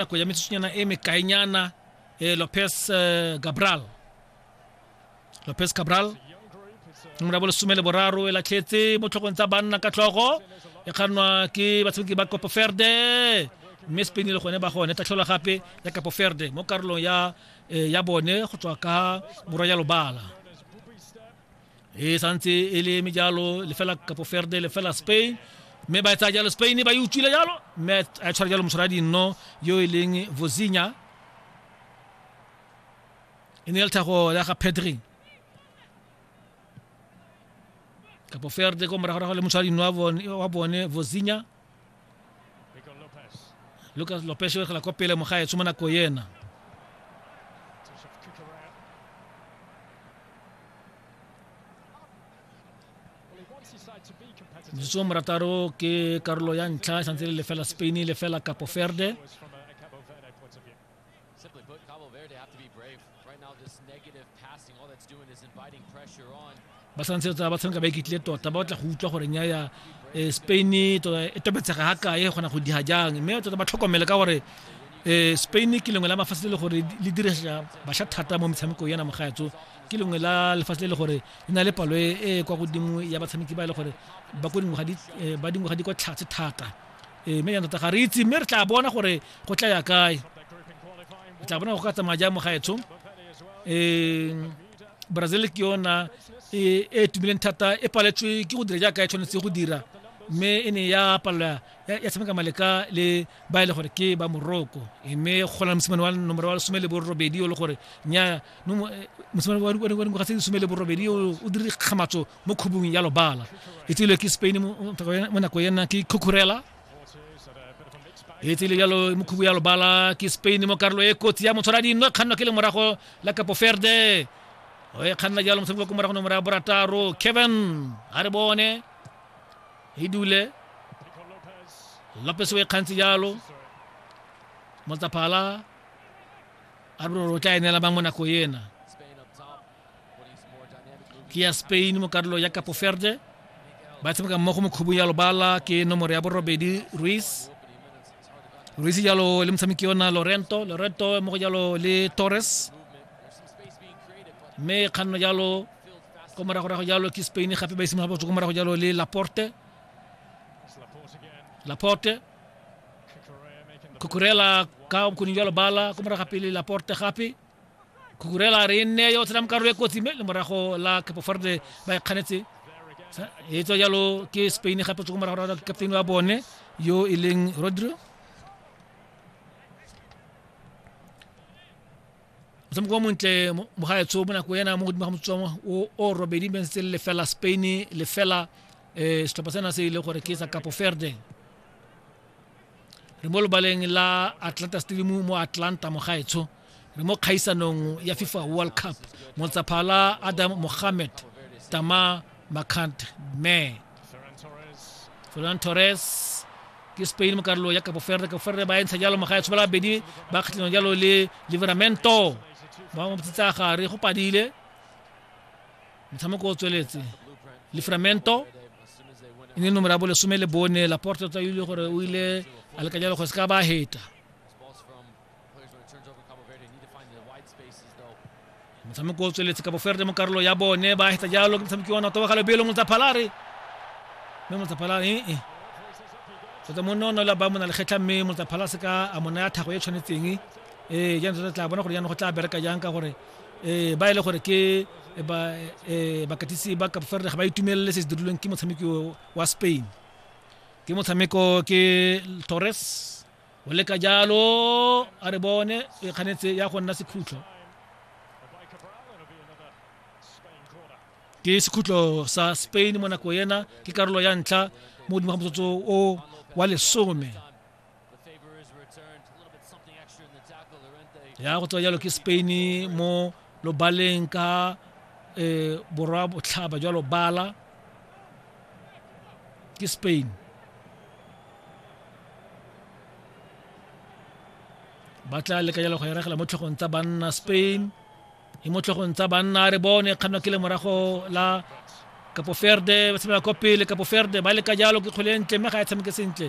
nako ya metsotsonyana e mekaenyana eh, lopez eh, gabral lopez gabral nomoro ya bolesome le boraro e latlhetse mo tlhogong tsa banna ka tlhogo e kgannwa ke batshameki ba kopoferde mme spain le gone ba gone tatlhola gape ya kapoferde mo karolong ya eh, ya bone go tswa ka borwa ya lobala e santse e le eme jalo lefela kapo ferde lefela spain mme ba e tsaya jalo spain ba e utswile jalo mme a tshwara jalo motshwara dinno yo e leng vosinya e ne e le tlhago ya ga pedri kapo ferde ko moragorago le motshwara dinno wa bone vosinya lucas lopes o egela kwa pele mogaetsho mo nako ena metsotso morataro ke karolo ya ntlha e santse le lefela spain lefela capo verde Simply put, Cabo Verde have to be brave. Right now, this negative passing, all that's doing is inviting pressure on. ba santse ba tshameka ba ikitlile tota ba batla go utlwa gore nya ya eh, spain e tota e topetsega ga kae e kgona go diga jang mme tota ba tlhokomele ka gore um spain ke lengwe la mafatshe le le gore le dirisa basha thata mo metshamekong yana mogaetso ke lengwe la lefatshe le le gore le na le palo e e kwa godimo ya batshameki ba e le gore ba ko dingwaga di eh, ba dingwaga di kwa tlhatse thata ee mme jaanong tota ga re itse mme re tla bona gore go tla ya kae re tla bona go ka tsamaya jang mo gaetsho um brazil ke yona e e tumileng thata e paletswe ke go dira jaaka e tshwanetse go dira mme e ne ya palelwa ya tshameka maleka le ba e le gore ke ba moroko mme go na mosimane wa nomoro wa lesome le borobedi o le gore nya mosimane wa dingwaga tse lesome le borobedi o dire kgamatso mo khubung ya lobala e tsile ke spain mo nako ena ke khukhurela e tsile yalo mo khubu ya lobala ke spain mo karolo e kotsi ya motshwara dino kganno ke le morago la kapo ferde o e kganna jalo motshameko ko morago nomoro ya borataro kevin a re bone e dule lopes o e kgantse jalo motsaphala a re o tla enela bang mo nako ena ke ya spain mo karolo ya capo verde ba tshameka mmogo mo khubung ya lobala ke nomoro ya borobedi ruiz ruiz jalo le motshameki yona lorento lorento mo go jalo le torres mme kganno jalo ko moragorago jalo ke spain gape ba isimolola botso ko morago jalo le laporte laporte kukurela ka bokoning jalo bala ko morago gape le laporte gape kukurela re e nne yo tsenang karolo e kotsi mme le morago la capofarde ba e kganetse e tswa jalo ke spain gape tsoko morago ra captain wa bone yo e leng rodri motshameko o montle mogaetsho mo nako ena mo godimo ga motswang o robedi mme se lefela spain lefela um setlhopha sena se e leng gore ke sa capo verde re mo lobaleng la atlanta stadium mo atlanta mogaetsho re mo kgaisanong ya fifa world cup montsaphala adam mohammed tama macant me ferran torres ke spain mo karolo ya kapo ferde kapo ferde ba entsha jalo mogaetsho ba labedi ba kgatlhano jalo le liveramento ba mo tsitsa gare go padile Motshameko o tsweletse Livramento e ne nomoro ya bolesome le bone Laporte tsa ile gore o ile a lekanya le go se ka ba heta motshameko o tsweletse kabo ferde mo karolo ya bone ba heta jalo ke motshameki wa nato wa gale belo motsaphalare mme motsaphalare ee eh, eh. tota mo nono la ba mo na le kgetlha mme motsaphala se ka a mona ya thago e tshwanetseng ee eh, jaanong tota tla bona gore jaanong go tla bereka jang ka gore eh, ba e le gore ke eh, ba eh, bakatisi ba Cape Verde ga ba itumelele se se dirilweng ke motshameki o- wa Spain ke motshameko ke Torres o leka jalo a re bone e kganetse ya go nna sekhutlo ke sekhutlo sa Spain mo nako ena ke karolo ya ntlha mo godimo ga motsotso o wa lesome ya go tswa jalo ke spain mo lobaleng ka um borwa botlhaba jwa lobala ke spain ba tla leka jalo go eregela mo tlhogong tsa banna spain e mo tlhogong tsa banna re bone kganwa ke le morago la kapoferde ba tshamela kwa pele kapoferde ba leka jalo ke kgwele ntle mme ga e tshameke sentle